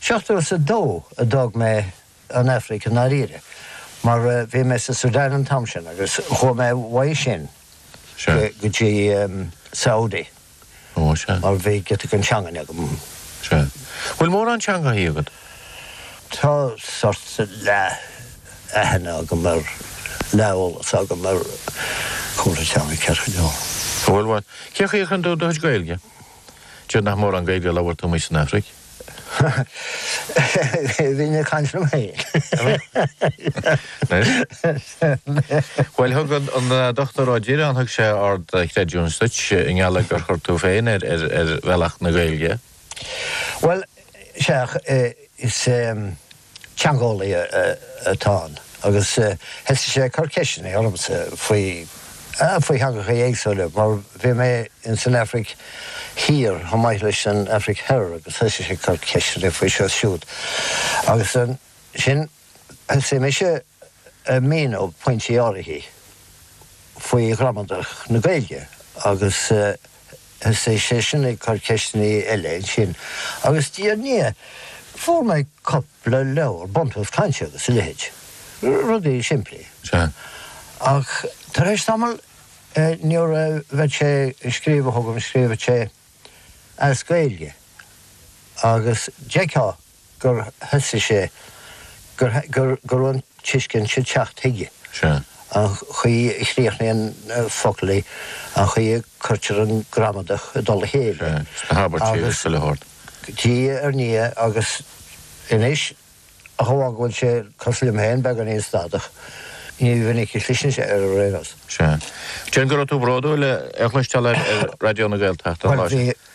Seachtó is a dó a d'fhág mé an Afraic i ndáiríre, mar bhí mé sa Sudan an t-am sin agus chuaigh mé uaidh sin go dtí Saudi mar bhí giota den teangain agam. Sea. Bhfuil mórán teangaidhthe agat? Tá sort leath aithne agam ar, leath eolas agam ar cúpla teanga, ceithre, go deo. Go maith. Cé a shaothraíonn tú do chuid Gaeilge? Déarfainn nach mórán Gaeilge a labhair tú amuigh san Afraic? Bhínn ag caint liom féin. Bhuel, thug an Dr. Ó Direáin, thug sé ard chreidiúint duit i ngeall gur chuir tú é féin ar bhealach na Gaeilge. Bhuel, sea, is. teangeolaí atá ann agus thosaigh sé ag cur ceisteanna ormsa faoi, ah, faoi theangacha éagsúile mar bhí mé in san Aifric Thiar chomh maith leis an Aifric Thoir agus thosaigh sé ag cur ceisteanna faoi seo is siúd agus ansin thosaigh mise ag míniú pointí áirithe faoi ghramadach na Gaeilge agus. Thosaigh seisean ag cur ceisteanna eile ansin. Agus diaidh ar ndiaidh, fuair mé cupla leabhar, Buntús Cainte agus a leithéid. Rudaí simplí. Sea. Ach tar éis tamall, nuair a bhead sé ag scríobh chugam, scríobhad sé as Gaeilge. Agus d'fheictheá gur thosaigh sé, gur, gur, go raibh an tuiscint sin teacht chuige. Sea. An chaoi a chríochnaíonn focail, an chaoi a cuirtear an gramadach i dtoll a chéile. Sea, sna habairtí agus sa leabhar. Agus diaidh ar ndiaidh agus anois, ach amháin go bhfuil sé cosúil liom féin beagáinín stadach, ní minic a chliseann sé air anois. Sea. Déarfainn go raibh tú bródúil a chloisteáil ar Raidió na Gaeltachta an lá sin. Bhuel, bhí.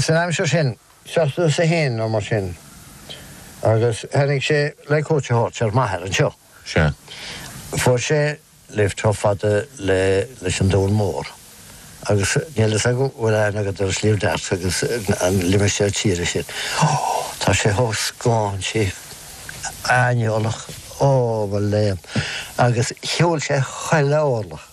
San aimsir sin, seachtó is a haon nó mar sin, agus tháinig sé le cuairt a thabhairt ar m'athair anseo. Sea, fuair sé lift chomh fada leis an Dún Mór, agus níl a fhios agam an bhfuil aithne agat ar Sliabh Dearg agus an limistéar tíre sin. Ó, tá sé chomh scáintí, aineolach, ó mo léan! Agus shiúil sé chuile orlach.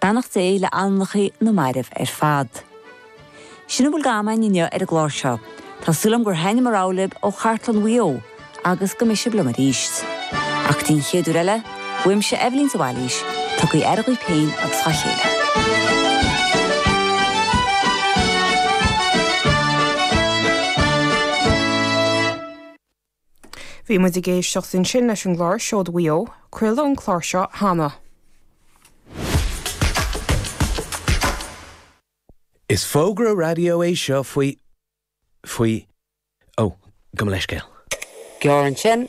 Beannacht Dé le hanamnacha na mairbh ar fad. Sin a bhfuil d'am againn inniu ar an gclár seo. Tá súil agam gur thaitin an rogha libh ó Chartlann Mhaigh Eo agus go mbeidh sibh liom arís. Ach go dtí an chéad uair eile, uaimse Eibhlín de Bhailís, tugaí aire dhaoibh féin agus dhá chéile. Bhí muid ag éisteacht ansin leis an gclár Seoid Mhaigh Eo, craoladh an clár seo cheana. Is fógra raidió é seo faoi, faoi, ó, gabh mo leithscéal. Gearr ansin.